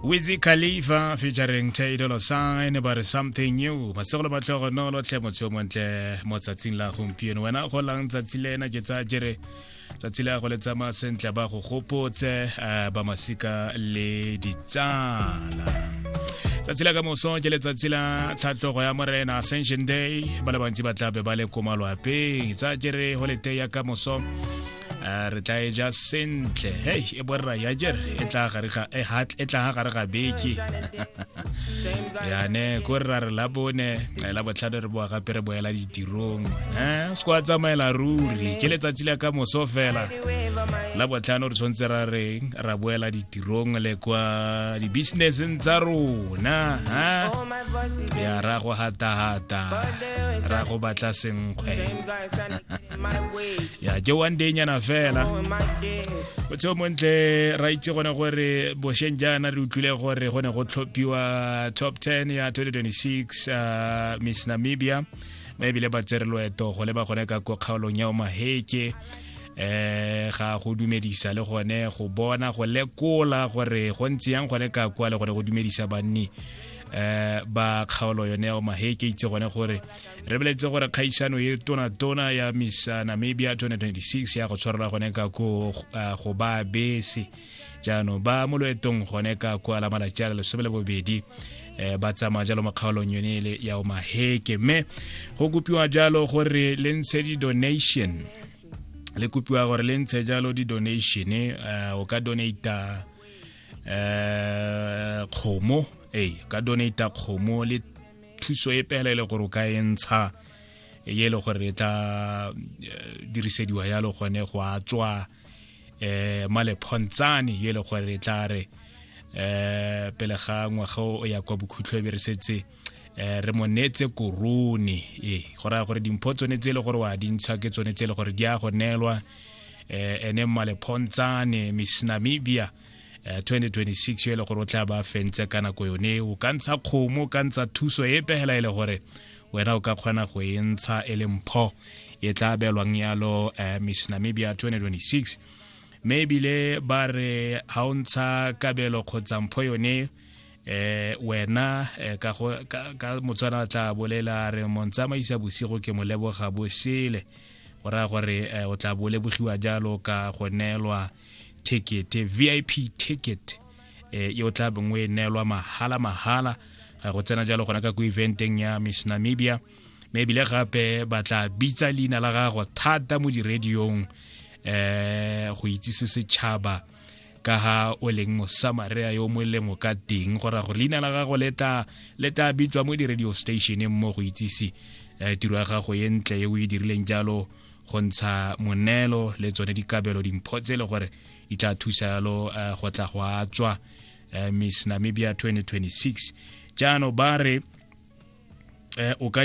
Wizi Khalifa featuring Tay Dolla Sign about something new. Masegolo ba tlogo no lo tle motho mo ntle mo tsatsing la gompieno. Wena go lang tsatsi le na ke tsa jere tsatsi la go le tsamaya sentle ba go gopotse eh, ba masika le ditsala. tsatsi la ka moso ke letsatsi la tlhatlogo ya morena ascension day ba le bantsi ba tlabe ba le ko malwapeng tsa kere go le tei ya ka moso Eh, re tla e ja sentle hei e borra ya jer e tla gare ga e hat e tla gare ga beke ya ne ko rra re la bone eh, la botlhano re boa gape re boela ditirong eh se kwa tsamaela ruri ke letsatsi la ka moso fela la botlhano re tshwanetse ra reng ra boela ditirong le kwa di-businesseng tsa rona ha ya ra go hatahata ra go batla senkgwe ya ke one day nyana fela o tseo montle ra itse gone gore bosheng jaana re utlwile gore go ne go tlhophiwa top 10 ya 2026 uh, miss namibia ba ebile ba tsere loeto go leba gone ka ko kgaolong ya omaheke eh ga go dumedisa le gone go bona go lekola gore go ntse yang gone ka kwa le gone go dumedisa banni eh ba kgaolo yone ya omaheke itse gone gore re beletse gore kgaisano e tonatona ya miss uh, namibia 2026 ya go tshwarela gone ka ko uh, go ba bese jaanong ba mo loetong gone ka ko ala malatsi a le lesome le bobedi eh, ba tsamaya jalo mo kgaolong yone ele ya o maheke mme go kopiwa jalo gore le ntshe di-donation le kopiwa gore le ntshe jalo di-donation uh, o ka donata um kgomo ee ka donata kgomo le thuso e pele e le gore o ka e ntsha e e le gore e tla eh, dirisediwa yalo gone go a tswa um malephontshane e le gore e tla re um pele ga ngwaga o ya kwa bokhutlho e be re setse um re mo neetse korone ee go raya gore dimpho tsone tse e le gore wa dintsha ke tsone tse e le gore di ya go neelwa um ene malephontshane miss namibia uh, eh, 2026 yo e le gore o tla ba fentse ka nako yone o ka ntsha kgomo o ka ntsha thuso e pegela e le gore wena o ka kgona go e ntsha e le mpho e tla belwang yalo uh, eh, miss namibia 2026 mme ebile ba re ga o ntsha kabelo kgotsa mpho yone eh wena eh, ka go ka motswana tla bolela re montsamaisa bosigo ke mo leboga bosele go raya gore eh, o tla bo lebogiwa jalo ka go neelwa ticket vip ticket eh, yo tla bongwe e neelwa mahala mahala ga go tsena jalo gona ka ko eventeng ya miss namibia me ebile gape ba tla bitsa leina la gago thata mo diradiong eh go itsise setšhaba ka ha o leng mosamaria yo molemo ka teng go ra gore leina la gago le tla bitswa mo di-radio stationeng mo go itsise eh, tiro ya gago e ntle e o e dirileng jalo go ntsha moneelo le tsone dikabelo dimpho tse e le gore di tla thusa yalo eh, go tla go a tswa eh, miss namibia 2026 jaanong ba re eh, o ka